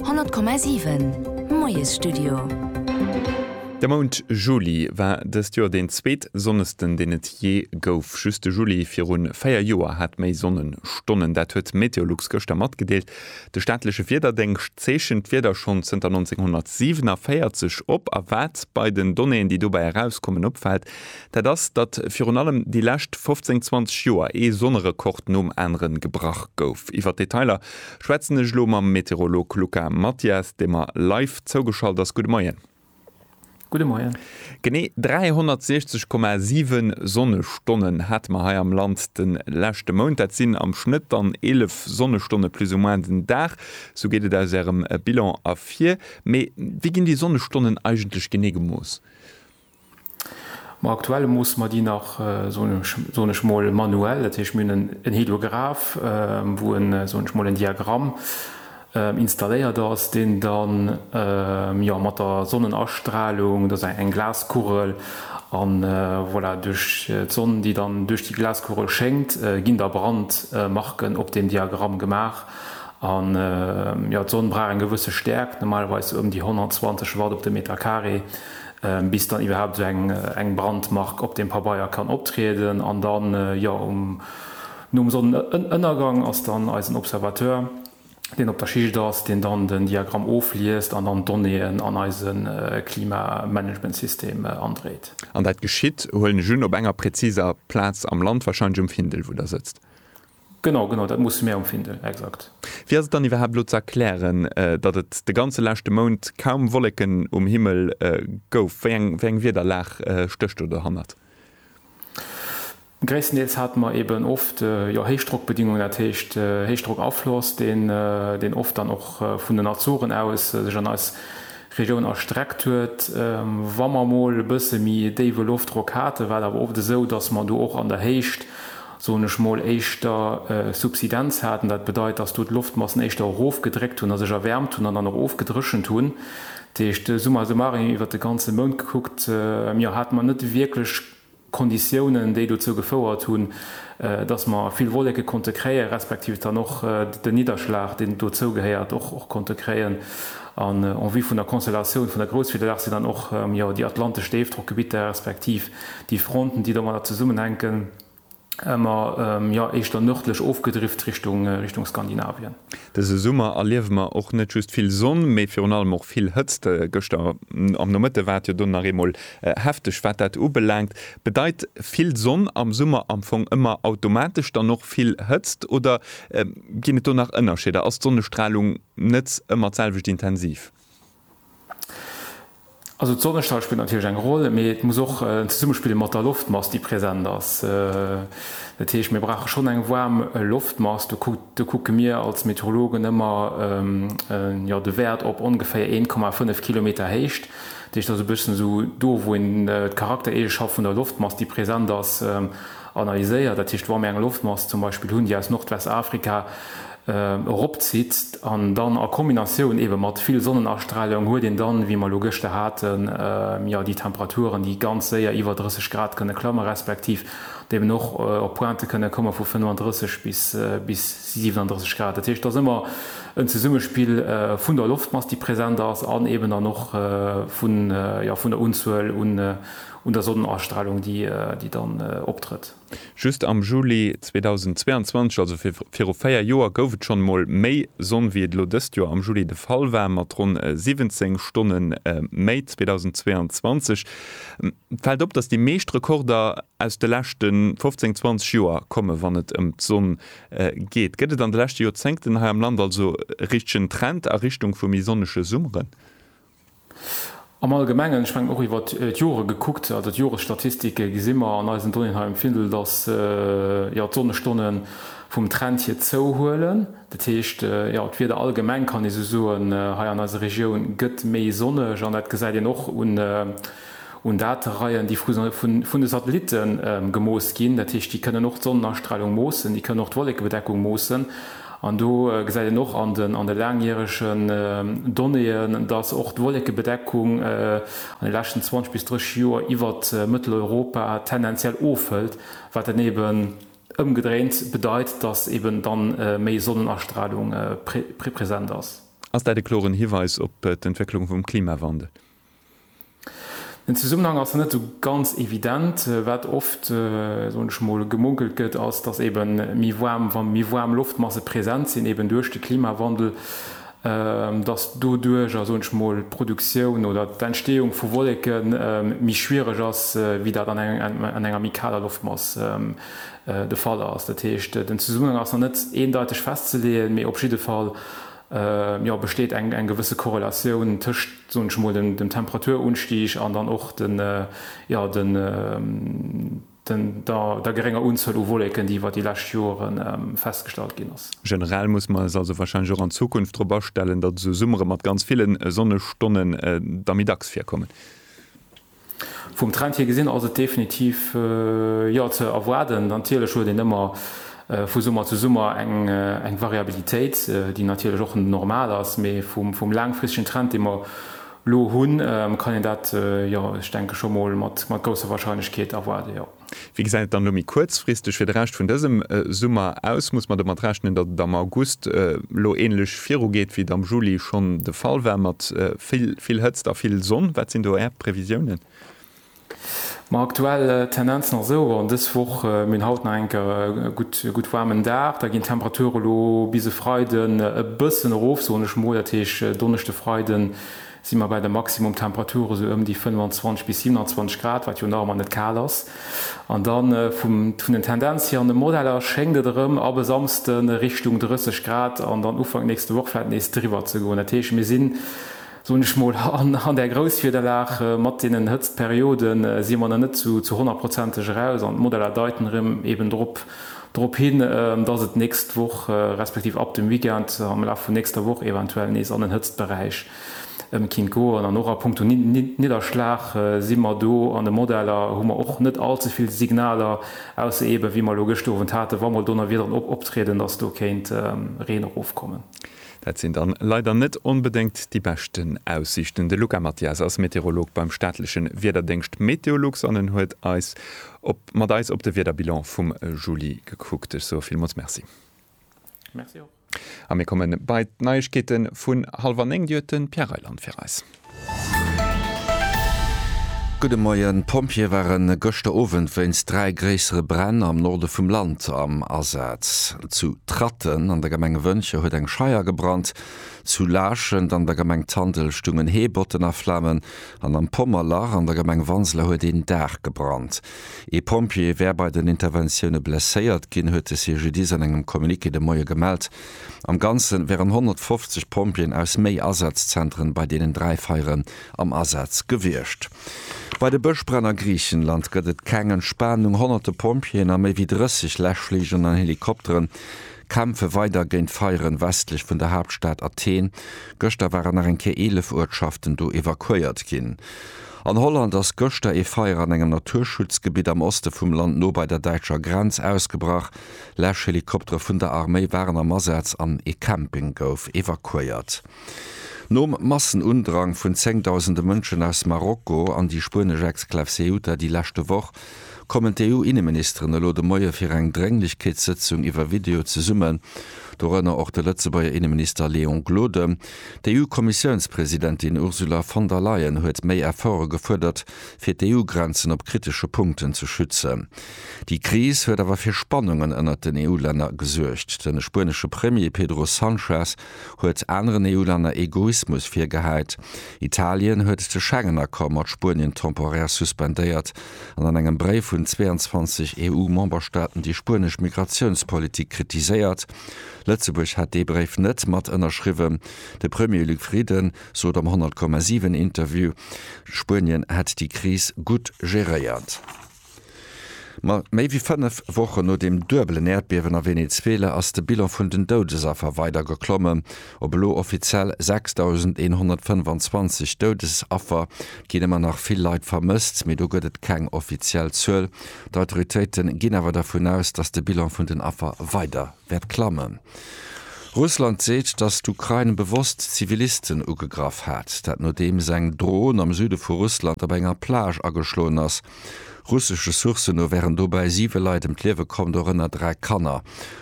100,7 Moiesstudio. De Mount Juli war dëst Joer deen zweet sonnesten, deen et jee gouf. Just de Juli virun véier Joer hat méi Sonnenstonnen. Dat huet Meteolux gëschter matgedeelt. De staatleche Wiederdéngscht zeechent d'Wieder schonn zënter 1947 op. A wat bei den Donnéeën, déi dobäi erauskommen, opfält, Dat ass, datt virun allem déi lescht 15, 20 Joer ee Sonnerekord nom aneren gebrach gouf. Iwwer d'Detailer schwätzen ech elo mam Meteorolog Luca Mathias, dee mer live zougeschalt ass. Gudde Moien. Gudde Moien. Genee 360,7 Sonnestonnen hate mer hei am Land de leschte Mount. Dat sinn am Schnëtt dann 11 Sonnestonne plus ou moins den Dag. Sou geet et aus Ärem Bilan ervir. Mee wéi ginn déi Sonnestonnen eigentlech genee gemooss? Ma aktuell moosse mer déi nach, soen ech mol, manuell. Dat heescht, mir hunn en Heliograph, wou en, soen ech mol, en Diagramm installéiert ass, deen da, jo, mat der Sonnenastralung, dat ass eng Glaskugel, a voilà, duerch d'Sonn, déi dann duerch déi Glaskugel schéngt, ginn da Brandmarken op deem Diagramm gemaach. A jo, d'Sonn brauch eng gewësse Stäerkt, normalerweis ëm déi 120 Watt op de Meter Carré. bis dann iwwerhaapt esou eng eng Brandmark op dem Pabeier kann optrieden an dann jo um nom Sonnenënnergang ass dann eisen Observateur deen op der Schicht ass deen dann den Diagramm ofliest an dann Donnéeën an eise Klimamanagementsystem andréit. An dat geschitt, huelen ech un, op enger präziser Plaz am Land, wahrscheinlech um Findel wou der sëtzt? Genau, genau, dat musse mär emfinden, exakt. Wéi ass et dann iwwerhaapt elo ze erklären, datt et de ganze leschte Mount kaum Wolleken um Himmel gouf? Wéi eng, wéi eng Wiederlag stécht do dohannert? Gréisstendeels hate mer eben oft, jo, Héichdrockbedingungen, dat heescht Héichdrockafloss, deen, deen oft dann och vun den Azoren aus sech an eis Regioun erstreckt huet. Wa mer emol e bësse méi déiwe Loftdrock haten, war et awer oft esou, datt mer do och an der Héicht, soen ech mol, éischter Subsidenz hat, an dat bedeit, dass do d'Loftmassen éischter erofgedréckt hunn a sech erwäermt hunn an dann och ofgedréchent hunn. Dat heescht, summa summarum, iwwert de ganze Mount gekuckt, jo, hate mer net wierklech Konditiounen, déi dozou gefouert hunn, dass mer vill Wolleke konnte kréien, respektiv dann och den Nidderschlag, deen dozougehéiert, och konnte kréien. An en vue vun der Konstellatioun vun der Grousswiederlag sinn dann och, jo, déi atlantesch Déifdrockgebitter, respektiv déi Fronten, déi domadder zesummenhänken, Mer jo éischter nërdlech ofgedrift Richtung Skandinavien. Dëse Summer erliewe mer och net just vill Sonn, mee virun allem och vill Hëtzt. Gëschter am Nomëtte war et jo dunn nach eemol hefteg, wat dat ubelaangt. Bedeit vill Sonn am Summer am Fong ëmmer automatesch dann och vill Hëtzt oder ginn et do nach Ënnerscheeder? Ass d'Sonnestralung net ëmmer d'selwecht intensiv? Also d'Sonnestall spillt natierlech eng Roll, mee et muss och en Zesummespill mat der Loftmass, déi present ass. Dat heescht, mir brauche schonn eng waarm Loftmass. Do kucke mir als Meteorologen ëmmer de Wäert op ongeféier 1,5 Kilometer Héicht. Dat heescht, dat ass e bëssen esou do, wou een d'Charaktereegenschaft vun der Loftmass, déi present ass, analyséiert. Dat heescht, wa mir eng Loftmass zum Beispill hunn, déi aus Nordwestafrika eropzitt an dann a Kombinatioun eebe mat vill Sonnenastralung huet een dann, wéi mer elo gëschter haten, jo déi Temperaturen, déi ganz séier iwwer 30 Grad kënne klamme respektiv déi eben och op Pointë kënne komme vu 35 bis 37 Grad. Dat heescht, et ass ëmmer en Zesummespill vun der Loftmass, déi present ass an eeben dann och vun der Unzuel un der Sonnenastralung, déi dann optrëtt. Just am Juli 2022, also viru véier Joer, gouf et schonn emol méi Sonn, wéi et elo dëst Joer am Juli de Fall war, mat ronn 17 Stonne méi. 2022 fält op, datt déi meescht Rekorder aus de leschte 15, 20 Joer kommen, wann et ëm d'Sonn geet. Gëtt et an de leschte Joerzéngten hei am Land also e richtegen Trend a Richtung vu méi sonnege Summeren? Am Allgemengen, ech mengen och iwwer d'Jore gekuckt, also d'Joresstatistike, gesi mer an eisen Donnéeën hei um Findel, datt jo d'Sonnestonne vum Trend hier zouhuelen. Dat heescht, jo d'Wieder allgemeng, kann ee sou soen, hei an eiser Regioun gëtt méi sonneg an dat gesäit een och un, un Datereien, déi vun de Satellitte gemooss ginn. Dat heescht, déi kënnen och d'Sonnenastralung moossen, déi kënnen och d'Wollekebedeckung moossen. An do gesäit een och an de laangjäregen Donnéeën, dass och d'Wollekebedeckung an de leschten 20 bis 30 Joer iwwer Mëtteleuropa tendenziell ofhëlt, wat dann eeben ëmgedréint bedeit, dass eeben da méi Sonnenastralung present ass. Ass dat e kloren Hiweis op d'Entwécklung vum Klimawandel? Den Zesummenhang ass net esou ganz evident. Wat oft, soen ech mol, gemunkelt gëtt, ass, datt ebe méi waarm, wa méi waarm Loftmasse present sinn, eben duerch de Klimawandel, datt doduerjer, soen ech mol, d'Produktioun oder d'Entstehung vu Wolleke méi schwiereg ass, wéi dat an enger méi kaler Loftmass de Fall ass. Dat heescht, den Zesummenhang ass nach net eendeiteg festzeleeën, mee op jidde Fall, jo besteet eng eng gewësse Korrelatioun tëscht, soen ech emol, dem dem Temperaturunstieg an dann och den jo den den der der gerénger Unzuel u Wolleken, déi iwwer déi lescht Jore festgestallt ginn ass. Generell muss mer eis also wahrscheinlech och an Zukunft drop astellen, datt esou Summere mat ganz ville Sonnestonne da méi dacks virkommen. Vum Trend hir gesinn ass et definitiv jo ze erwaarden. Natierlech huet een ëmmer vu Summer zu Summer eng Variabilitéit, déi natierlech och normal ass, mee vum laangfristegen Trend, dee mer elo hunn, kann een dat jo ech denke scho mol mat grousser Wahrscheinlechkeet erwaarden, jo. Wéi gesäit et dann elo méi kuerzfristeg fir de Rescht vun dësem Summer aus? Muss mer domat rechnen, datt et am August elo änlech virugeet, wéi et am Juli schonn de Fall war, mat vill, vill Hëtzt a vill Sonn? Wat sinn do Är Previsiounen? Ma aktuell d'Tendenz nach esou an dës Woch, Mir hunn haut nach eng Kéier e gutt, e gutt waarmen Dag. Da ginn d'Temperature elo bis e Freiden e bëssen erof, soen ech emol. Dat heescht, Donneschde, Freiden, si mer bei de Maximumtemperature esou ëm déi 25 bis 27 Grad, wat jo nach ëmmer net kal ass. An da vum, vun den Tendenz hier an de Modeller schéngt et erëm ab e Samsde Richtung 30 Grad an dann Ufank nächste Woch vläit nees driwwer ze goen. Dat heescht, mir sinn, soen ech mol, an, an där Grousswiederlag. Mat deenen Hëtztperiode si mer nach net zu, zu honnertprozenteg eraus an d'Modeller deiten erëm eben drop. Drop hin, dass et nächst Woch, respektiv ab dem Weekend, am Laf vun nächster Woch eventuell nees an den Hëtztberäich kéint goen. An och a Punkto Nidderschlag si mer do an de Modeller, hu mer och net all ze vill Signaler, ausser eeben, wéi mer elo gëschter Owend haten, wa mol Donnerwiederen optrieden, dass do kéint Reen erofkommen. Dat sinn dann leider net onbedéngt déi beschten Aussiichten. De Luca Mathias ass Meteorolog beim staatlechen Wiederdéngscht Meteolux an en huet eis op. Mat eis op de Wiederbilan vum Juli gekuckt. Ech soe villmools Merci. Merci och. A mir kommen bei d'Neiegkeete vun hallwer néng. Déi huet de Pierre Reyland fir eis. Gudde Moien. D'Pompjeeë ware gëschter Owend wéinst dräi gréissere Bränn am Norde vum Land am Asaz. Zu Tratten an der Gemeng Wëntger huet eng Scheier gebrannt, zu Laachend an der Gemeng Tandel stungen Heebotten a Flamen, An am Pommerlach an der Gemeng Wanseler huet een Daach gebrannt. Ee Pompjee wär bei den Interventioune blesséiert ginn, huet de CGDIS an engem Communiqué de Moie gemellt. Am Ganze wären 150 Pompjeeën aus méi Asazzentere bei deenen dräi Feiere am Asaz gewiescht. Bei de Bëschbränn a Griichenland gëtt et keng Entspanung. Honnerte Pompjeeën a méi wéi 30 Läschfligeren an Helikopteren Kämpfe weider géint Feieren westlech vun der Haaptstad Athen. Gëschter waren nach eng Kéier 11 Uertschaften do evakuéiert ginn. An Holland ass gëschter ee Feier an engem Naturschutzgebitt am Oste vum Land no bei der däitscher Grenz ausgebrach. Läschhelikoptere vun der Arméi waren am Asaz an ee Camping gouf evakuéiert. Nom Massenundrang vun zéngdausende Mënschen aus Marokko an déi spuenesch Exklav Ceuta déi leschte Woch, kommen d'EU-Inneministeren elo de Moie fir eng Drénglechkeetssëtzung iwwer Video zesummen, dorënner och de Lëtzebuerger Inneminister Léon Gloden. D'EU-Kommissiounspresidentin Ursula von der Leyen huet méi Efforte gefuerdert, fir d'EU-Grenzen op kritesche Punkten ze schützen. Déi Kris huet awer fir Spannungen ënnert den EU-Länner gesuergt. De spuenesche Premier Pedro Sanchez huet aneren EU-Länner Egoismus virgeheit. Italien huet de Schengen-Accord mat Spuenien temporär suspendéiert an an engem Bréif un 22 EU-Memberstaaten déi spuenesch Migratiounspolitik kritiséiert. Lëtzebuerg hätt dee Bréif net mat ënnerschriwwen. De Premier Luc Frieden sot am 100,7 Interview, Spuenien hätt déi Kris gutt geréiert. Ma méi wéi fënnef Wochen no dem duebelen Äerdbiewen a Venezuela ass de Bilan vun den Doudesaffer weider geklomme. Op elo offiziell 6.125 Doudesaffer ginn ëmmer nach vill Leit vermësst, mee do gëtt et keng offiziell Zuel. D'Autoritéite ginn awer dervun aus, datt de Bilan vun den Affer weider. wäert klammen. Russland seet, datt d'Ukrain bewosst Zivilisten ugegraff hat. Dat nodeems eng Dron am Süde vu Russland op enger Plage ageschloen ass. Russesche Sourcen no wären dobäi siwe Leit ëm d'Liewe komm, dorënner dräi Kanner.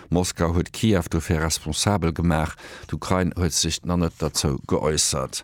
Moskau huet Kiew dofir responsabel gemaach. D'Ukrain huet sech nach net derzou geäussert.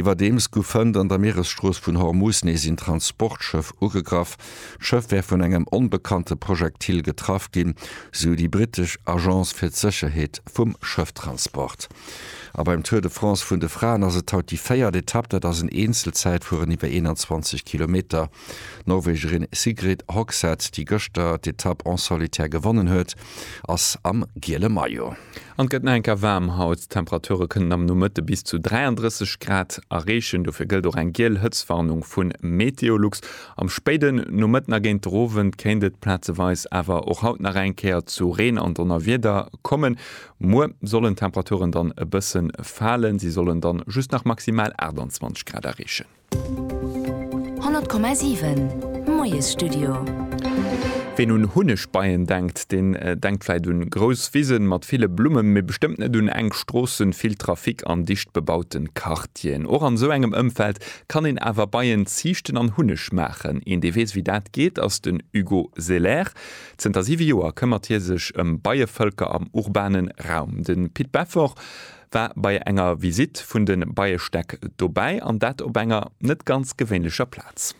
Iwwerdeems gouf hënt an der Mieresstrooss vun Hormuz nees een Transportschëff ugegraff. D'Schëff wär vun engem onbekannte Projektil getraff ginn, sou déi brittesch Agence fir d'Sécherheet vum Schëfftransport. A beim Tour de France vun de Fraen ass et haut déi véiert Etapp. Dat ass en Eenzelzäitfueren iwwer 21 Kilometer. D'Norwegerin Sigrid Hogseth, déi gëschter d'Etapp en solitaire gewonnen huet, ass am giele Maillot. An et gëtt nach eng Kéier waarm haut. D'Temperature kënnen am Nomëtte bis zu 33 Grad erreechen. Dofir gëllt och eng giel Hëtztwarnung vu Meteolux. Am spéiden Nomëtten a géint den Owend kéint et plazeweis awer och haut nach eng Kéier zu Reen an Donnerwieder kommen. Muer sollen d'Temperaturen dann e bësse falen, si sollen dann just nach maximal 28 Grad erreechen. 100,7 Moiesstudio. Ween un Hunnegbeien denkt, deen denkt vläit un grouss Wisen mat ville Blummen, mee bestëmmt net un enk Stroossen, vill Trafic an dicht bebauten Quartieren. Och an esou engem Ëmfeld kann een awer Beien ziichten an Hunneg maachen. Een dee weess wéi dat geet ass den Hugo Selaire. Zënter 7 Joer këmmert hie sech ëm Beievëlker am urbanen Raum. Den Pit Beffort. war bei enger Visitt vun de Beiestäck dobäi an dat op enger net ganz gewéinlecher Plaz.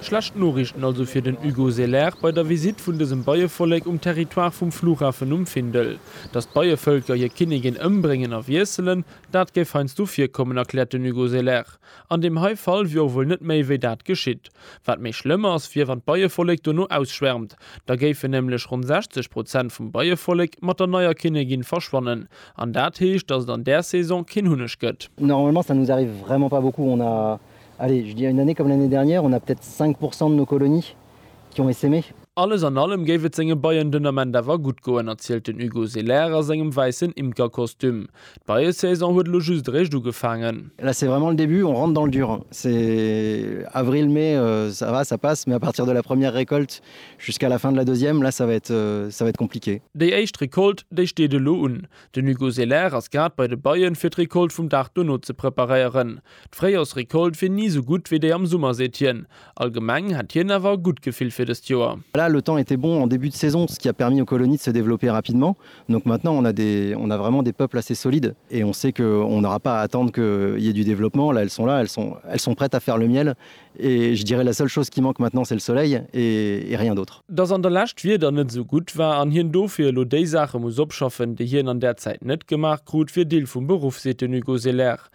Schlecht Noriichten also fir den Hugo Selaert bei der Visitt vun dësem Beievollek um Territoire vum Flughafen um Findel. Datt d'Beievëlker hir Kinnigin ëmbréngen a wiesselen, dat géif heiansdo virkommen, erkläert den Hugo Selaert. An deem hei Fall wier och wuel net méi wéi dat geschitt. Wat méi schlëmm ass, wier wann d'Beievollek dono ausschwärmt. Da géifen nämlech ronn 60 Prozent vum Beievollek mat der neier Kinnegin verschwannen. An dat heescht, datt et an där Saison keen Hunneg gëtt. Normalement ça nous arrive vraiment pas beaucoup, on a, allez je dirais une année comme l'année dernière, on a peut-être 5 pourcent de nos colonies. Junge si méi. Alles an allem géif et senge Beien den Ament awer gutt goen, erzielt den Hugo Selaire a sengem wäissen Imkerkostüm. D'Beiesaison huet elo just eréischt ugefaangen. Là c'est vraiment le début, on rentre dans le dur. C'est avril, mai, ça va, ça passe, mais à partir de la première récolte jusqu'à la fin de la deuxième, là ça va être, ça va être compliqué. Déi éischt Récolte, déi steet elo un. Den Hugo Selaire ass grad bei de Beien, fir d'Récolte vum Dag dono ze preparéieren. D'Fréijorsrécolte wier ni esou gutt wéi déi am Summer, seet hien. Allgemeng hätt hien awer e gutt Gefill fir dëst Joer. Voilà, le temps était bon en début de saison, ce qui a permis aux colonies de se développer rapidement. Donc maintenant, on a des, on a vraiment des peuples assez solides et on sait que on n'aura pas à attendre qu'il y ait du développement. Là, elles sont là, elles sont, elles sont prêtes à faire le miel et je dirais la seule chose qui manque maintenant, c'est le soleil et, et rien d'autre. Dass an der Lescht d'Wieder net esou gutt war an hien dofir elo déi Saache muss opschaffen, déi hien an där Zäit net gemaach krut, wier Deel vum Beruff, seet den Hugo Selaire.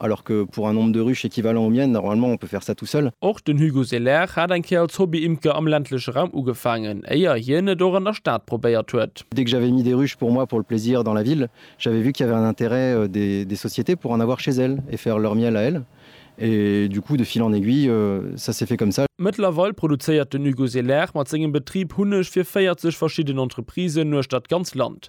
Alors que pour un nombre de ruches équivalent au mien, normalement on peut faire ça tout seul. Och den Hugo Selaire hat eng Kéier als Hobby-Imker am ländleche Raum ugefaangen, éier hien et och an der Stad probéiert huet. Dès que j'avais mis des ruches pour moi pour le plaisir dans la ville, j'avais vu qu'il y avait un intérêt des sociétés pour en avoir chez elles et faire leur miel à elles et du coup de fil en aiguille ça s'est fait comme ça. Mëttlerweil produzéiert den Hugo Selaire mat sengem Betrib Hunneg fir 40 verschidden Entreprisen uechter d'ganz Land.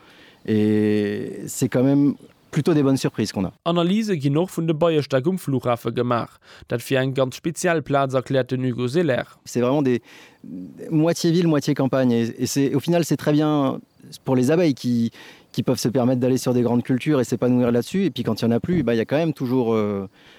Et c'est quand même plutôt des bonnes surprises qu'on a. Analyse ginn och vun de Beiestäck um Flughafe gemaach. Dat wier eng ganz speziell Plaz, erkläert den Hugo Selaire. C'est vraiment des moitié ville, moitié campagne et c'est au final c'est très bien pour les abeilles qui qui peuvent se permettre d'aller sur des grandes cultures et s'épanouir là-dessus et puis quand il y en a plus, il y a quand même toujours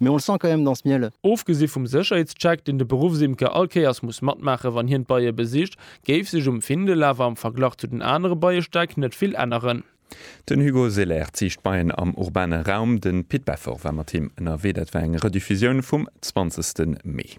Mais on le sent quand même dans ce miel. Ofgesi vum Sécherheetscheck, deen de Beruffsimker all Kéiers muss matmaache wann hien d'Beie besicht, géif sech um Findel awer am Verglach zu den anere Beiestäck net vill änneren. Den Hugo Selaert sicht Beien am urbane Raum. Den Pit Beffer war mat him ënnerwee. Dat war eng Rediffusioun vum 20 Mee.